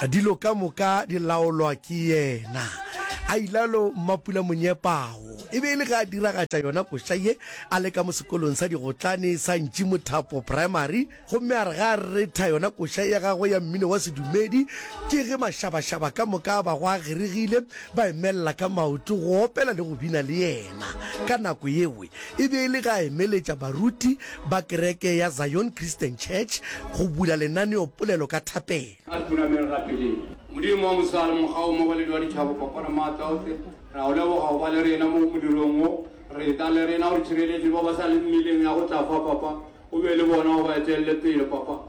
Dilo ka moka di laolwa ke yena, a ilalo Mmapula Monyepago. E be e le ge a diragatša yona koša ye, a le ka mo sekolong sa digotlane sa Ntši Mothapo Primary, gomme a re ge a retha yona koša ya gagwe ya mmino wa sedumedi, ke ge mašabašaba ka moka a bago a geregile, ba emelela ka maoto go opela le go bina le yena. Ka nako yewe e be e le ge a emeletša baruti ba kereke ya Zion Christian Church go bula lenaneopolelo ka thapelo. A re tunameng rapeleng. Modimo wa mosegare, mokgao mmogo le Dwadithabo kopano maatla ohle, re a go leboga go ba le rena mo modirong wo. Re tla le rena o re tšhireletše ba ba sa leng mmileng ya go tla fa, Papa. O be le bona, o ba etelele pele, Papa.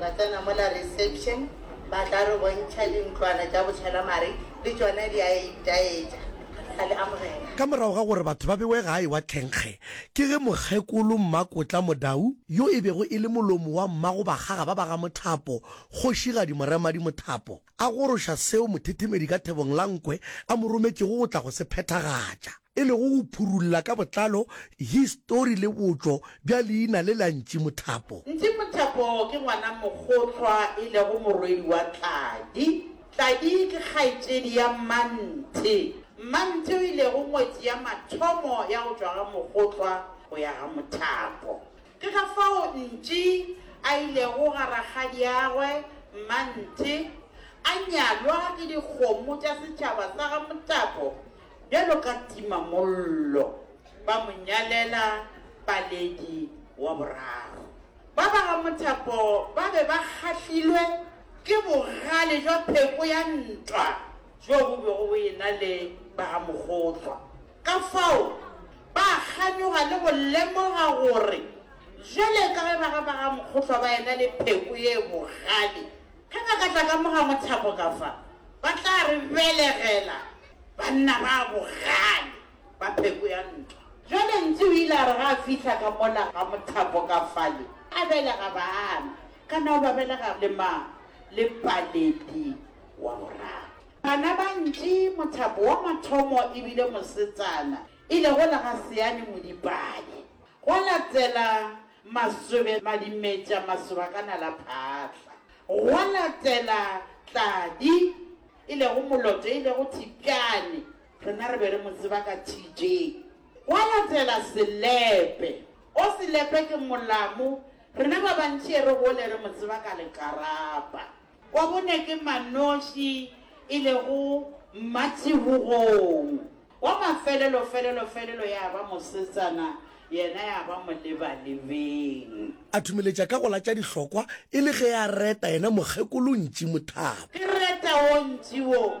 Ra tsena mola reception, ba tla re bontšha dintlwana tša botšhelamare, le tšona di a itaetša. Ra le amogela. Ka morago ga gore batho ba bewe gae wa thenkge, ke ge Mokgekolo Mmakotla Modau, yo e bego e le molomo wa Mmagobakgaga ba ba ga Mothapo, Kgošigadi Moremadi Mothapo, a goroša seo mothethemedi ka thebong la nkwe a mo rometšego go tla go se phethagatša, e lego go phurulla ka botlalo histori le botšo bja leina le la Ntši Mothapo. Ntši Mothapo ke ngwana mokgohlwa e lego morwedi wa Tladi. Tladi ke kgaetšedi ya Mmanthe. Mmanthe o ilego ngwetši ya mathomo ya go tšwa ga mokgohlwa go ya ga mothapo. Ke ka fao Ntši a ilego ga rakgadiagwe Mmanthe, a nyalwa ke dikgomo tša setšhaba sa ga Mothapo bjalo ka timamollo, ba mo nyalela Paledi wa boraro. Ba ba ga Mothapo ba be ba kgahlilwe ke bogale bja pheko ya ntwa bjo bo bego bo e-na le ba ga Mokgotlwa. Ka fao, ba kganyoga le go lemoga gore bjale ka ge baga ba ga Mokgohlwa ba ena le pheko ye bogale, ge ba ka tla ka mo ga Mothapo ka fa, ba tla re belegela banna ba bogale ba pheko ya ntwa. Bjale Ntsi o ile a re ga a fihla ka mola ga Mothapo ka fale, a belega baana, kana o ba belega le mang? Le Paledi wa boraro. Bana ba ntši, mothapo wa mathomo e bile mosetsana e lego lega Seane Modipane, gwa latela Masobe Madimetša Masobakana la Phatla, gwa latela Tladi e lego Moloto e lego Thipjane, rena re be re mo tseba ka TJ, gwa latela Selepe o Selepe ke Molamu, rena ba bantši e re gole re mo tseba ka Lekarapa. Wa bone ke Manoši e lego Mmatšhebogong. Wa mafelelo felelo felelo ya ba mosetsana yena ya ba molebalebeng. A thumeletša ka go latša dihlokwa e le ge a reta yena Mokgekolo Ntši Mothaba. Ke reta wo Ntši wo.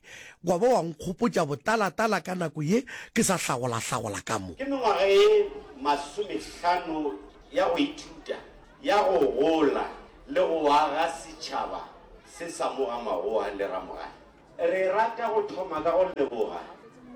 Wa ba wa nkgopotša botala-tala ka nako ye ke sa hlagola-hlagola ka mo. Ke mengwaga e masomehlano ya go ithuta, ya go gola le go aga setšhaba se sa mo ga Magoa le Ramogae. Re rata go thoma ka go leboga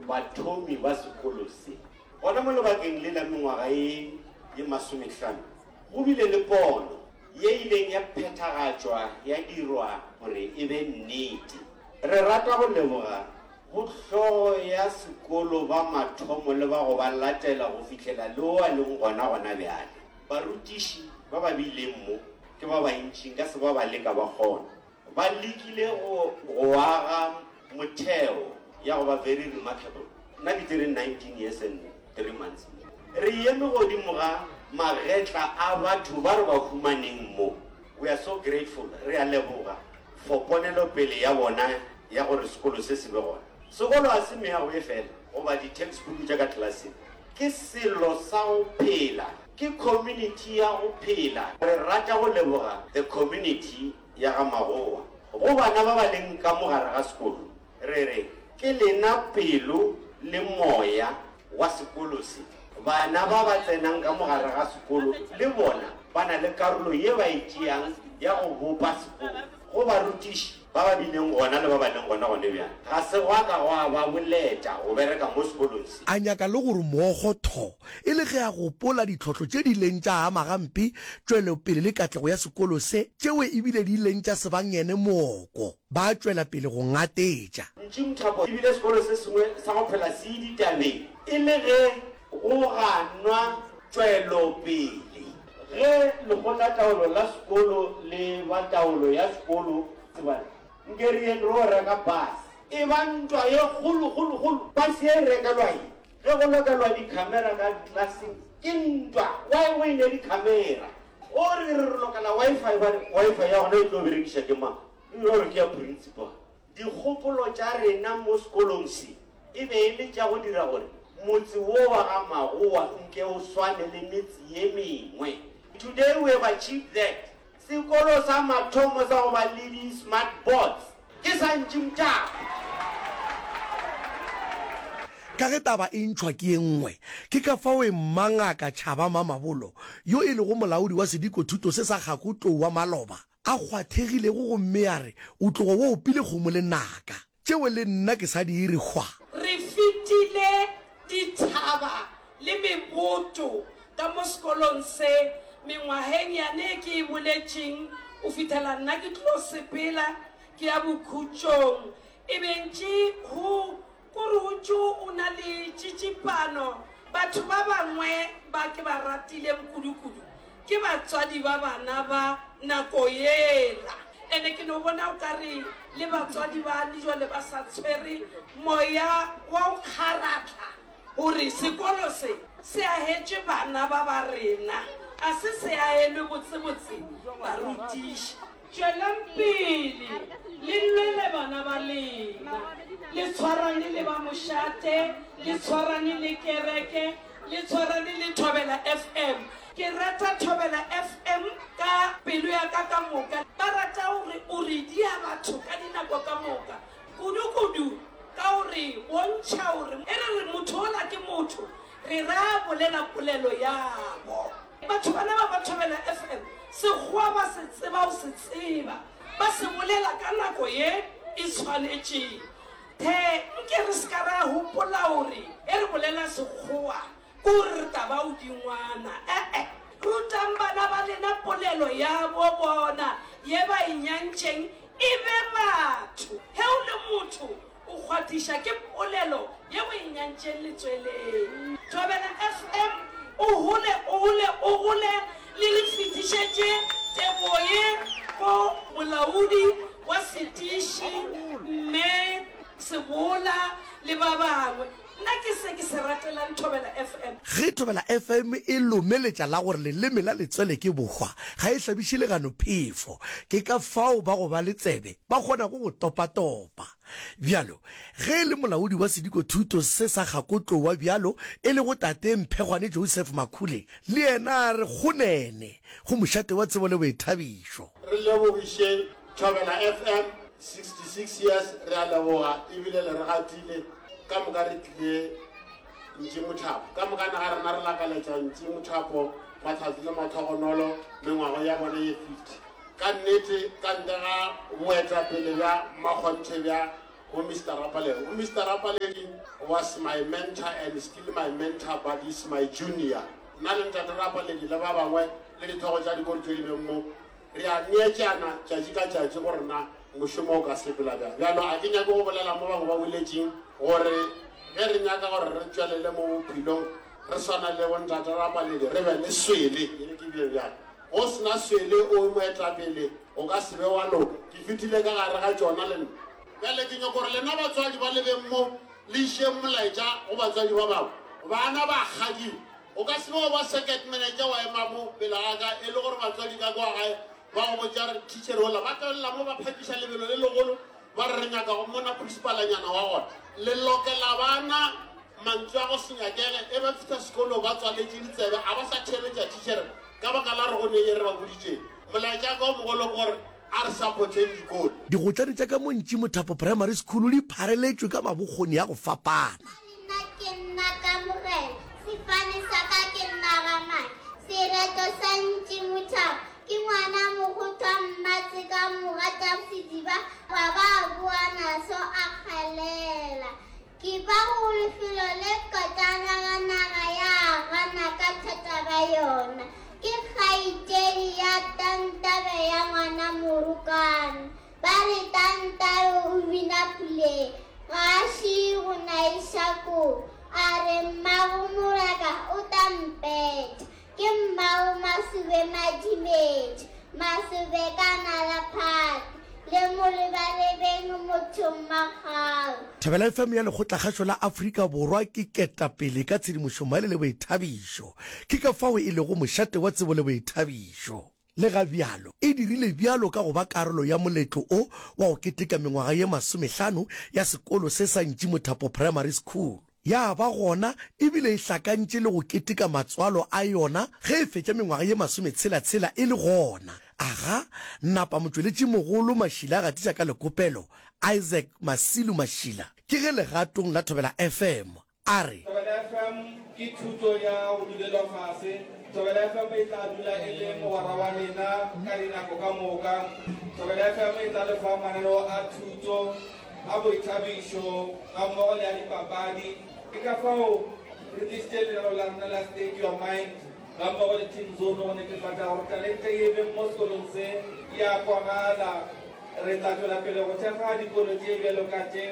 bathomi ba sekolo se. Gona mo lebakeng le la mengwaga e ye masomehlano, go bile le pono. Ye ileng ya phethagatšwa ya dirwa gore e be nnete. Re rata go leboga bo hlogo ya sekolo ba mathomo le ba go ba latela go fihlela le wo a leng gona gona bjale. Barutiši ba ba bileng mo ke ba bantši nka se ba bale ka ba kgona. Ba lekile go go aga motheo ya go ba very remarkable. Nna ke tsere 19 years and three months mo. Re eme godimo ga magetla a batho ba re ba humaneng mo. We are so grateful, re a leboga for ponelopele ya bona ya gore sekolo se se be gona. Sekolo ga se meago e fela goba di-textbook tša ka klaseng. Ke selo sa go phela, ke community ya go phela. Re rata go leboga the community ya ga Magowa. Go bana ba ba leng ka mo gare ga sekolo, re re ke lena pelo le moya wa sekolo se. Bana ba ba tsenang ka mo gare ga sekolo le bona ba na le karolo ye ba e tšeang ya go bopa sekolo. Go barutiši ba ba bileng gona le ba ba leng gona gone bjale, ga se gwa ka gwa ba boleta go bereka mo sekolong se. A nyaka le gore moogo thoo e le ge a gopola ditlhohlo tše di ileng tša ama gampe tšwelopele le katlego ya sekolo se, tšeo e bile di ileng tša se ba ngene mooko ba tšwela pele go ngatetša. Ntši Mthopo e bile sekolo se sengwe sa go phela se ditabeng e le ge go ganwa tšwelopele. Ge lekgotlataolo la sekolo le ba taolo ya sekolo Tshibane, Nkeriyeng ro reka bus, e ba ntwa ye kgolokgolokgolo. Bus ye e rekelwa eng? Ge go lokelwa di camera ka classing ke ntwa why o ile di camera. O re re lokela Wi-Fi ba re Wi-Fi ya gona e tlo berekiša ke mang? Mme o re ke ya principal. Dikgopolo tša rena mo sekolong se e be e le tša go dira gore motse wo wa ga Magowa nke o swane le metse ye mengwe. Today we have achieved that. Sekolo sa mathomo sa go ba le di smart boards ke sa Ntši Mtaka. Ka ge taba e ntšhwa ke ye nngwe, ke ka fao Emma Ngaka Chaba Mamabolo, yo e lego molaodi wa sediko thuto se sa Kgako Tou wa maloba, a kgwathegilego gomme a re o tlogo wa opile kgomo lenaka. Tšeo le nna ke sa di iri hwa. Re fetile dithaba le meboto ka mo sekolong se, mengwageng yane e ke e boletšeng, go fihlela nna ke tlo sepela ke ya bokhutšong. E be ntši go Kuruju o na le tšitsipano, batho ba bangwe ba ke ba ratileng kudukudu Ke batswadi ba bana ba nako yela. Ene ke no bona o ka re le batswadi bane jwale ba sa tshwere moya wa go kgaratla gore sekolo se se agetšwe bana ba ba rena, ga se se agelwe botsebotse barutiši. Tšweleng pele le lwele bana ba lena, le tshwarane le ba mošate, le tshwarane le kereke, le tshwarane le Thobela FM. Ke rata Thobela FM ka pelo ya ka ka moka. Ba rata gore o redia batho ka dinako ka moka, kudu-kudu ka gore o ntšha gore e re re motho ola ke motho, re ra bolela polelo yabo. Batho bana ba Mathobela FM sekgowa ba se tseba o se tseba ba se bolela ka nako ye e tshwanetšeng the nke re seka ra hopola gore e re bolela sekgowa ko re taba o dingwana ee rutang bana ba lena polelo ya bo bona ye ba e nyantšeng e be batho he o le motho O kgwathiša ke polelo yeo e nyantšeng letsweleng. Thobela FM o hole o hole o gole le re fetišetše tebogo ye go molaodi wa setiši Mme Sebola le ba bangwe. Nna ke se ke se ratelang Thobela FM. Ge Thobela FM e lomeletša la gore leleme la letswele ke bohwa, ga e hlabiše legano phefo. Ke ka fao ba go ba le tsebe ba kgonago go topatopa. Bjalo, ge e le molaodi wa sedikothuto se sa gakotlowa bjalo e lego Tate Mphegwane Joseph Makhule, le yena a re kgonene go mošate wa tsebo le boithabišo. Re lebogiše Thobela FM 66 years re a leboga ebile le re gatile ka moka re tlile ntši mothapo ka moka naga rena re lakaletša ntši mothapo matlhatsi le mathogonolo mengwago ya bone ye 50 ka nnete ka ntle ga boetapele bja makgonthe bja go mr rapaledi go mr rapaledi was my mentor and still my mentor but is my junior nna le ntate rapaledi le ba bangwe le dithogo tša dikori tse di beng mo Re a neetšana tšatši ka tšatši gore na mošomo o ka sepela bjang. Bjalo a ke nyake go bolela mo bangwe ba boletšeng gore ge re nyaka gore re tšwelele mo bophelong re swana le bontate Rapaledi, re be le swele. Ke re ke bje bjang? Go se na swele o moetapele o ka se be wa loka. Ke fetile ka gare ga tšona le nna. Bjale ke nyaka gore lena batswadi ba lebeng mo le išeng molaetša go batswadi ba bangwe. Bana ba kgadiwa. O ka se be wa ba circuit manager wa ema mo pela ga ka e le gore batswadi ka kwa gae ba go botša re teacher ola ba tlolela mo ba phakiša lebelo le legolo ba re re nyaka go mona principalanyana wa gona le lokela bana mantswe a go se nyakege e ba fitha sekolo ba tswaletše ditsebe a ba sa theletša teacher ka baka la re go ne e re ba boditšeng molaetša ka o mogolo gore a re supporteng dikolo Digotlane tša ka mo Ntšimothapo Primary School di phareletšwe ka mabokgoni a go fapana. Ke nna, ke nna ka Morena, sefane sa ka ke nna ga mane, sereto sa ntši mothaba, ke ngwana mokgothwa mmatse ka mo gata sediba, ba ba boa naso a kgalela. Ke ba go lefelo le kotana ga naga ya gana ka thata ba yona, ke kgaitedi ya tantabe ya ngwana morokana, Ba re Tantau o bina puleng, ga a šie go na e šakong, a re mmago moraka o tla mpeta. Ke mmago Masobe Madimetše, Masobe ka nala phate, le mo lebalebeng motho mmagau. Thobela FM ya Lekgotlakgašo la Afrika Borwa ke ketapele ka tshedimošommaele le boithabišo. Ke ka fao e lego mošate wa tsebo le boithabišo. Lega bjalo, e dirile bjalo ka go ba karolo ya moletlo o wa go keteka mengwaga ye masomehlano ya sekolo se sa Ntši Mothapo Primary School. Ya ba gona e bile e hlakantše le go keteka matswalo a yona ge e fetša mengwaga ye masometshela-tshela e le gona. Aga, napa motšweletšimogolo Mashila a gatiša ka lekopelo, Isaac Masilu Mashila, ke ge legatong la Thobela FM a re. Thobela FM ke thuto ya go dulelwa fase. Thobela FM e tla dula e le mogwera wa lena ka dinako ka moka. Thobela FM e tla le fa mananeo a thuto, a boithabišo gammogo le a dipapadi. Ke ka fao re tlišitše lenaneo la rena la State Your Mind. Gammogo le Team Zone go netefatša gore talente ye e beng mo sekolong se e a kwagala. Re tla tšwela pele go thekga dikolo tše bjalo ka tše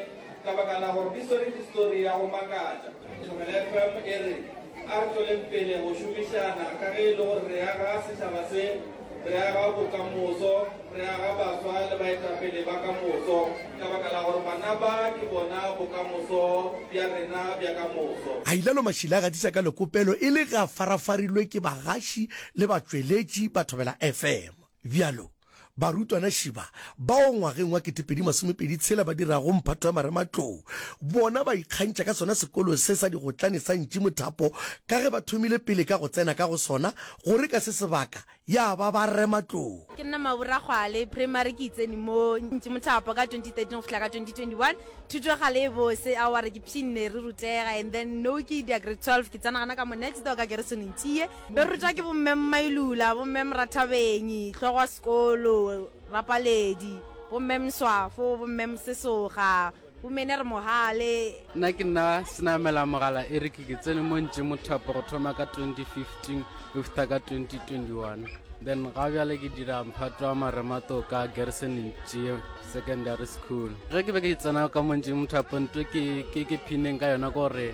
ka baka la gore di swere histori ya go makatša. Tlogela FM e re, A re tšweleng pele go šomišana ka ge e le gore re aga setšhaba se Re aga bokamoso, re aga baswa le baetapele ba ka moso, ka baka la gore bana ba ke bona bokamoso bja rena bja ka moso. Hailalo Mashile a gatiša ka lekopelo e le ge a farafarilwe ke bagaši le batšweletši ba Thobela FM. Bjalo, barutwana šiba bao ngwageng wa ketepedi masomepedi tshela ba dirago mphato ya marematlou, bona ba ikgantšha ka sona sekolo se sa digotlane sa Ntši Mothapo ka ge ba thomile pele ka go tsena ka go sona gore ka se sebaka ya ba ba rema tlou. Ke nna Mabura Kgwale, primary ke itsene mo Ntši Mothapo ka 2013 go fihla ka 2021. Thuto ya kgale e bose, a wa re ke pshinne re rutega and then now ke idia grade 12 ke tsena gana ka mo next door ka Gerison Ntšie. Be rutwa ke bo Mme Mmailula, bo Mme Morathabeng, hlogo wa sekolo, bapaledi, bo Mme Mswafo, bo Mme Mosesoga, Gomene re mogale. Nna ke nna senamela mogala Eric ke tsene mo ntše mothapo go thoma ka 2015 go fitha ka 2021 then ga bjale ke dira mphato wa maremato ka Gerson Ntšee Secondary School. Ge ke be ke tsena ka mo ntše mothapo nto ke ke ke phineng ka yona gore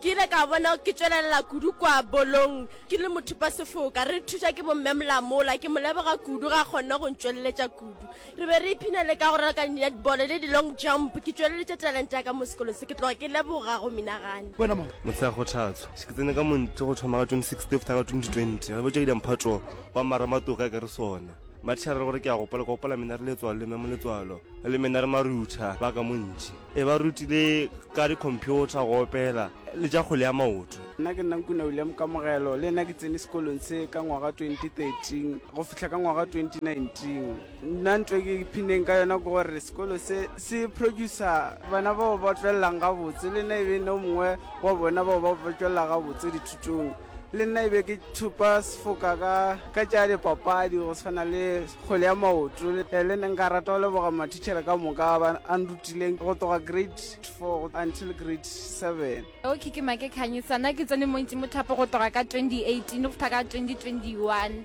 Ke ile ka bona ke tšwelelela kudu kwa bolong ke le mothupasefoka. Re thuša ke bomme Molamola, ke mo leboga kudu ga kgonne go ntšweleletša kudu. Re be re ipshina le ka go raloka netball le di-long jump. Ke tšweleletše talente ya ka mo sekolo se ke tloga ke leboga go menagane. Mehla ya kgothatso. Se ke tsene ka Montlo go thoma ka 26 February ka 2020. Re botša Idamphatšo wa Maramatoka ke re sona. Mathiara re gore ke a gopola, ke gopola mena re letswalo le Mme Moletswalo le mena re marutha ba ka mo ntši. E ba rutile ka dikhomphiotha, go opela le tša kgwele ya maoto. Nna ke nna Nkuna William Kamogelo, le nna ke tsene sekolong se ka ngwaga 2013 go fihla ka ngwaga 2019. Nna ntho e ke iphinneng ka yona ke gore sekolo se se producer bana bao ba tšwelelang gabotse, le nna e be e nna o mongwe wa bona bao ba tšwelela gabotse dithutong. Le nna e be ke thupa sefoka ka ka tša dipapadi go tshwana le kgwele ya maoto. Le nna nka rata go leboga mathichele ka moka ba a nrutileng go tloga grade four until grade seven. Okay ke Makekanyetsa, nna ke tsene mo Ntšimothapo go tloga ka twenty eighteen go fitlha ka twenty twenty one.